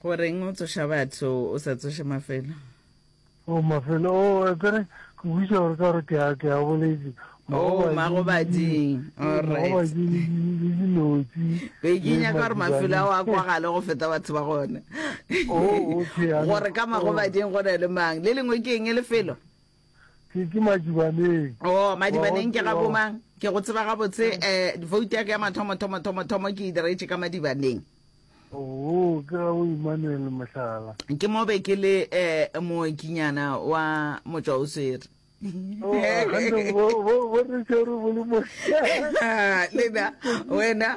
Go reng o tsoša batho o sa tsoše mafelo? O mafelo o epere ke buša gore ka gore ke a ke a boletse. Oh magobading. All right. Magobading le dinotsi. Be ke nya ka gore mafelo a wa kwa gale go feta batho ba gone. Oh okay. Gore ka magobading go ne le mang? Le lengwe ke eng lefelo? ke ke madibaneng oh madibaneng ke ga bomang ke go tseba gabotse um eh, vote ya ke ya mathomo thomo thomo thomo ke e diretse ka madibaneng oo ke ga o emmanuel mohlala ke mo be ke le um mookinyana wa motswa o swere oh, lena wena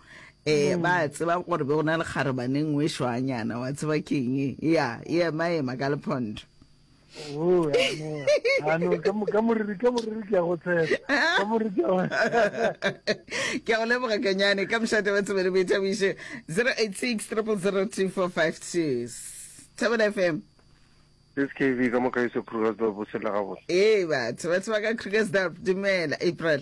eh mm. ba tseba gore be go na le kgarebaneng o e shwanyana wa tseba keng e ya e ema ema ka lephondo Oh, ke a go leboga kanyane ka mošate ba tsebele boithabiše 086 3002452 thabela fm skv ka mokaise krugersdorp o tshela gabotse ee batho ba tseba ka krugersdorp dumela april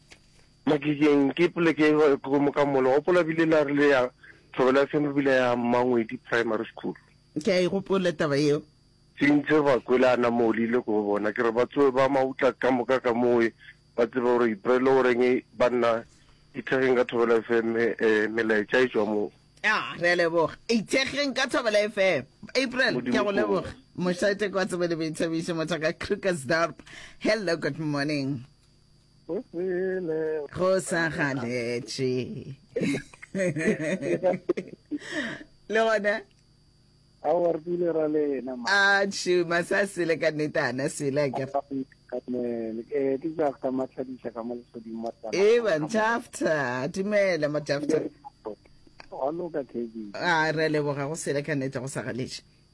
Makikeng ke poleke ko Mokamolo. Gopola bile la re le ya thobela seno bile ya Mmangwedi Primary School. Ke a e gopola taba yeo. Sintse ba kwele a nama o lile ko bona ke re ba tsoe ba mautla ka moka ka moe ba tsebe gore iprele o reng ba nna ithekgeng ka thobela FM melaetša e tšwa mo a re a leboga ithekgeng ka thobela FM April ke go leboga mošate kwa tsebe le boithabišo motho ka Krugersdorp hello good morning go sele go sa galetše le gona awarpile ra lena a tšhuma sa sele ka nnete ana sele ke eh, ke jafta matlhadisa ka mo legodimo e ba jafta dumela mo jafta a loka kedi a re leboga go sele ka nnete go sa galetše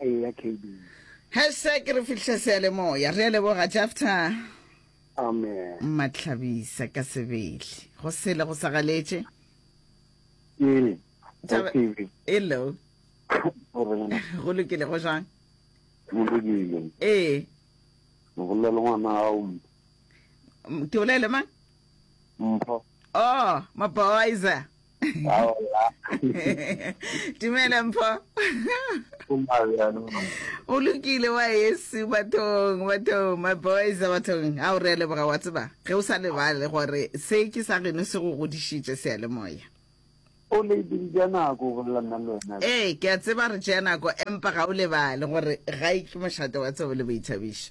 Eya KB. Hashtag re fihle seyalemoya. Re a leboga Jafta. Amen. Matlhabisa ka sebele. Go sele go sa galetše. Ee. Taba- Taba- Hello. Go lokile go jang? Mologile. Ee. Mogolela le ngwana gago mpho. M- Ke bolele mang? Mpho. Oh, maboiza. dumela mpho o lokile wa yesu bathong bathong my boys a bathong a o re leboga wa tseba ge o sa lebale gore se ke sa geno se go godišitše sealemoya o ne dija nako go bolela nna le wena ee ke a tseba re tšea nako empa ga o lebale gore ga e ke mošate wa tsebo le boithabišo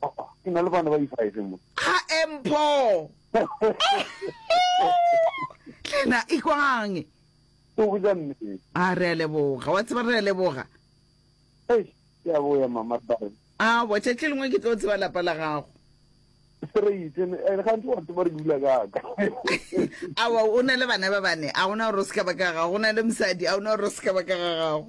Papa, ke na le bana ba di-five mo. Ga e mpho. Tlena ikwang. Ke go ja mme. A re a leboga, wa tseba re a leboga. Ei, ke a boya mama ba re. A bo tšatši lengwe ke tlo tseba lapa la gago. Straight, and ga ntse wa tseba re dula ka ka. Awa o na le bana ba bane, a gona gore o se ka ba ka gago, o na le mosadi, a gona gore o se ka ba ka ga gago.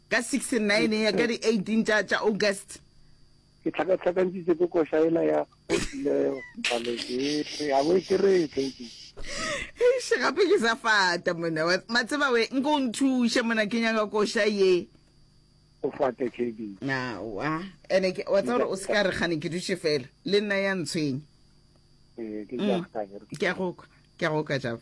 Ka 69 ya ka di 18 tša tša August. Ke tlhakatlhakantšitše ke koša ela ya go tlilego balo ke re a bo e keree tledi. Eish gape ke sa fata mona wa matseba we nko o nthushe mona ke nyaka koša ye. O fate tledi. Awa ene ke wa tsa gore o se ka re gane ke dutše fela le nna ya ntshwenya. Ee ke ja ka ke. Ke a go kwa ke a go kwa java.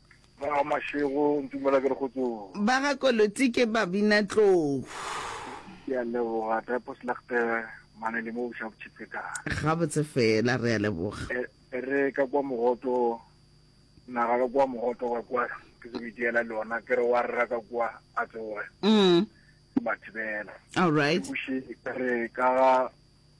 Ba ga Mashego, Ntumela ke re kgotsong. Ba ga Koloti ke babinatlou. Ke a leboga, Drapos Legte, mane le mo Bošabotšhepetala. Gabotse fela, re a leboga. E, e re ka kwa mogoto, naga ka kwa mogoto ka kwa, ke se bitiela le ona, ke re wa rra ka kwa a tsoge. Mm. Ke ba thibela. All right. Ke buše, e re ka ga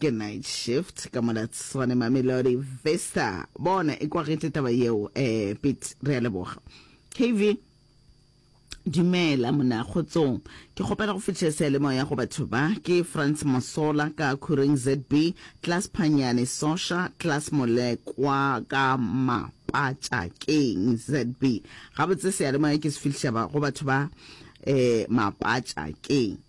ke night shift ka mola tswane mamelodi vista bona e kwagetse taba yeo eh pit re a leboga kv Dumela mona kgotsong ke kgopela go fetša sealemoya go batho ba ke France Masola ka Khureng ZB class Phanyane Sosha class Molekwa ka Mapatšakeng ZB gabotse sealemoya ke se fihliša ba go batho ba eh Mapatšakeng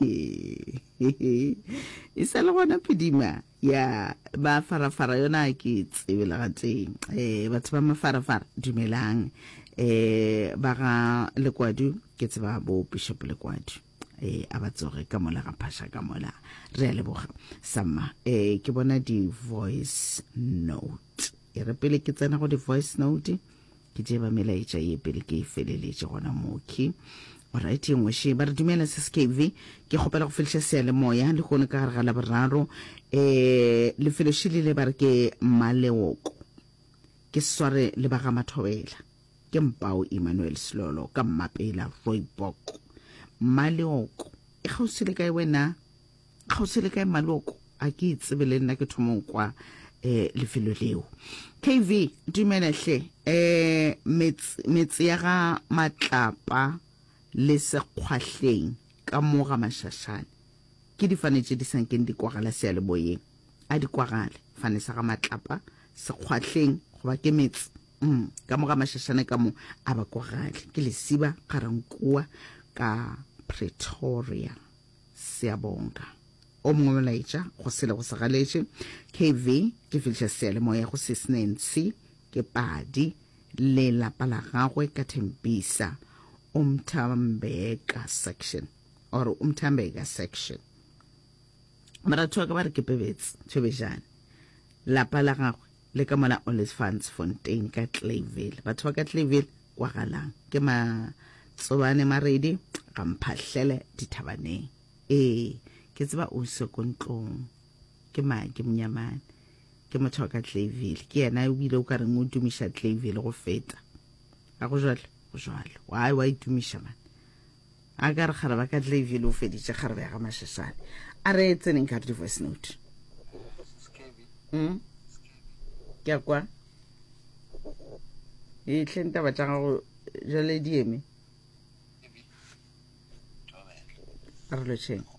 e sa le gona phedima ya ba farafara yona ke tsebe le gateng um eh, batho ba mafarafara dumelang um ba ga lekwadu ke tseba bo bishop lekwadu eh a ba tsoge ka mola ga phasha ka mola re a leboga samma eh ke bona di voice note e re pele ke tsena go di voice note Ke tseba melaetša ye pele ke e feleletše gona mooki. Alright, ye nngwe še. Ba re dumela Sis KV, ke kgopela go feliša seyalemoya lehono ka gare ga Laboraro. Eh, lefelo še lile ba re ke Maleoko. Ke sware le ba ga Mathobela. Ke Mpao Emmanuel Slolo ka Mmapela Rooibok. Maleoko e kgauswi le kae wena? Kgauswi le kae maloko? A ke itsebe le nna ke thomong kwa eh, lefelo leo. KV, dumela hle. Eh, metse, metse ya ga Matlapa le Sekgwahleng ka mo ga Mashashane. Ke difane tše di sa nkeng di kwagala sealeboyeng. A di kwagale, fane sa ga Matlapa, Sekgwahleng, goba ke metse. Mm, ka mo ga Mashashane ka mo, a ba kwagale. Ke lesiba, Garankuwa, ka Pretoria. Siyabonga. O mongwe molaetša go sele go sa galetše. KV, ke fihliša seyalemoya go Sis Nancy, ke padi, le lapa la gagwe ka Tembisa, Umthambeka section, or Umthambeka section. Baratho ba ka ba re ke Pebets, Thobejane. Lapa la gagwe le ka mola Olifantsfontein ka Clayville. Batho ba ka Clayville kwagalang ke matsobane maredi ga mphahlele dithabaneng ee ke tseba o se ko ntlong ke mang ke monyamane ke motho wa ka tlavile ke yena o bile o ka reng o dumiša tlavile go feta a go jalo go jalo wa wa e dumiša mane A ka re kgareba ka tle ebjele o feditše kgarebe ya ga Mashashane. A re tseneng ka di voice note. Mm. Ke a kwa. E tle ntaba tša gago jale di eme. A re lotšheng.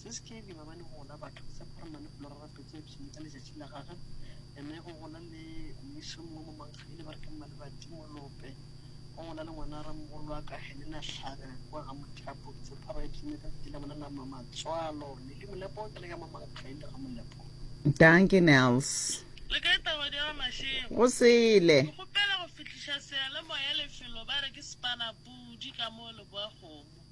Se se kile ba ba le gona batho ke sa phara mane fulora rapetse epsene ka letšatši la gage ene go gona le mmiso mongwe mo mankgaile ba re ke mmalebati molope go gona le ngwana ramogolo wa ka helena tlhaga kwa ga mothapo ke tse phara epsene ka ke la bona la mamatswalo le le molepo ke le ka mamankgaile ga molepo danke nels le ka etaba di ga mashego go sele ke gopela go fihliša seyalemoya lefelo ba re ke sepanapudi ka mo leboa kgomo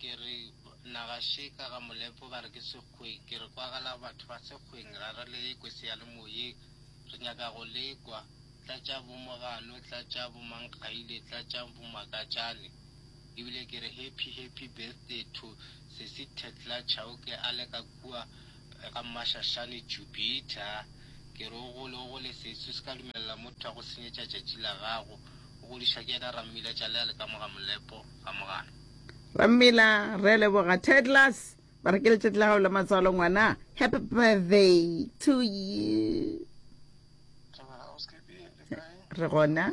Ke re, Na gaše ka ga molepo ba re ke sekgweng? Ke re, Kwagala batho ba sekgweng, ra re le ekwe seyalemoyeng. Re nyaka go le kwa. Tlatšang bomogano, tlatšang bomankgaile, tlatšang bomakatšane. E bile ke re, Happy, happy birthday to Sesi Thetla Chauke a le ka kua ga Mmashašane Jupita. Ke re, O gole, o gole sesi, o se ka dumelela motho a go senyetša tšatši la gago. O godišwa ke yena Rammiletša le a le ka mo ga molepo. ga mogano. Rammila, re leboga. Tedlas, ba re ke letšatši la gago la matswalo ngwana. Happy birthday to you. Re gona.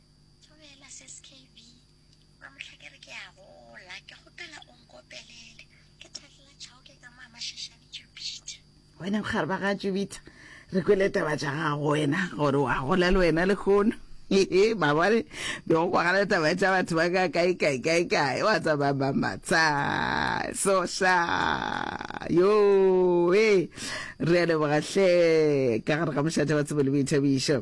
Thobela Sis KB, Ba mohla ke re ke a gola, ke kgopela o nkopelele. Ke Thahlela Chauke ka mo Amashashane Jupiter. Wena bogare ba ga Jupiter, re kwele taba tša gago wena gore wa gola le wena lehono. Hehe, mabone be go kwagala taba tša batho ba ka kae kae kae kae wa tsamaya mamatsa soša yo e re a lebogahle ka gare ga mošate wa tsebo le boithabišo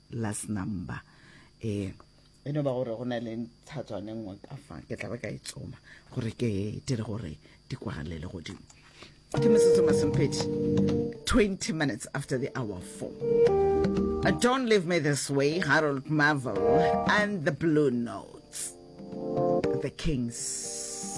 last number e e no ba gore go na le ntshatswane nngwe ka fa ke tla ba ka e tsoma gore ke dire gore di kwagalele godimo ke metsotso masomphedi 20 minutes after the hour four uh, don't leave me this way harold marvel and the blue notes the kings